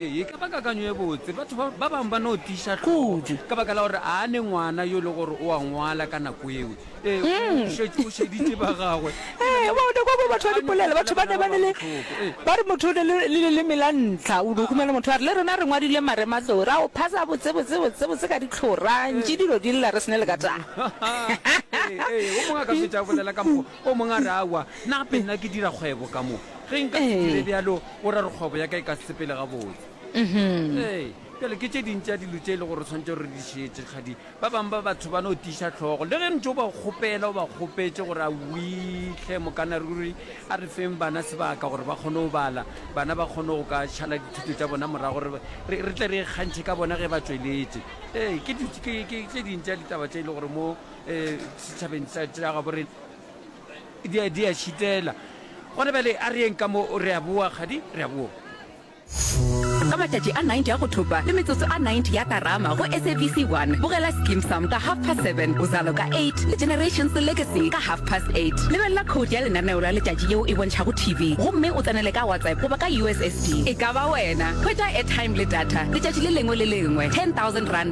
E ka ba kakanyo ye botse. Batho ba, ba bangwe ba no tiiša tlhogo Kudu. ka baka la gore a ne ngwana yo e le gore o a ngwala ka nako yeo. Ee, o, o šetše o šeditše ba gagwe. Ke na Ee, le wa o ne kwa ba batho ba kakanyo dipolela, fela batho ba ne ba ne le, bohloko. Ee. ba re motho o ne le, le leleme la ntlha, o no humela motho a re, le rena re ngwadile marematlou, ra o phasa botse, botse, botse, botse ka dihlora, ntši dilo di lla re se ne le ka taba. Ee, ee, wo mongwe a ka fetša a bolela ka mokgo O mongwe a re, Aowa, nna gape nna ke dira kgwebo ka mo. Ge nka se dire Ee. bjalo, o ra gore kgwebo ya ka e ka se sepele gabotse. Ee, bjale ke tše ding tša dilo tše e le gore re tshwanetse re di šetše. Kgadi, ba bangwe ba batho ba no tiiša hlogo. Le ge ntše o ba kgopela, o ba kgopetše gore, Awii, hle Mokana ruri, a re feng bana sebaka gore ba kgone go bala, bana ba kgone go ka šala dithuto tša bona morago, re, re, re tle re ikgantšhe ka bona ge ba tšweletše. Ee, ke, di, ke, ke tše ding tša ditaba tše e le gore mo um setšhabeng sa gabo re di a šitela gona bjale a re yeng ka mo re a boa kgadi re a boa ka matšatši a 90 a go thopa le metsotso a 90 ya karama go sabc 1 bogela skim sam ka half past 7 bozalo ka 8 le generations legacy ka half past 8 lebelela code ya lenaneo la letšatši yeo e bontšhago tv gomme o tsenele ka whatsapp goba ka ussd e ka ba wena hwetša airtime le data letšatši le lengwe le lengwe 10000 rand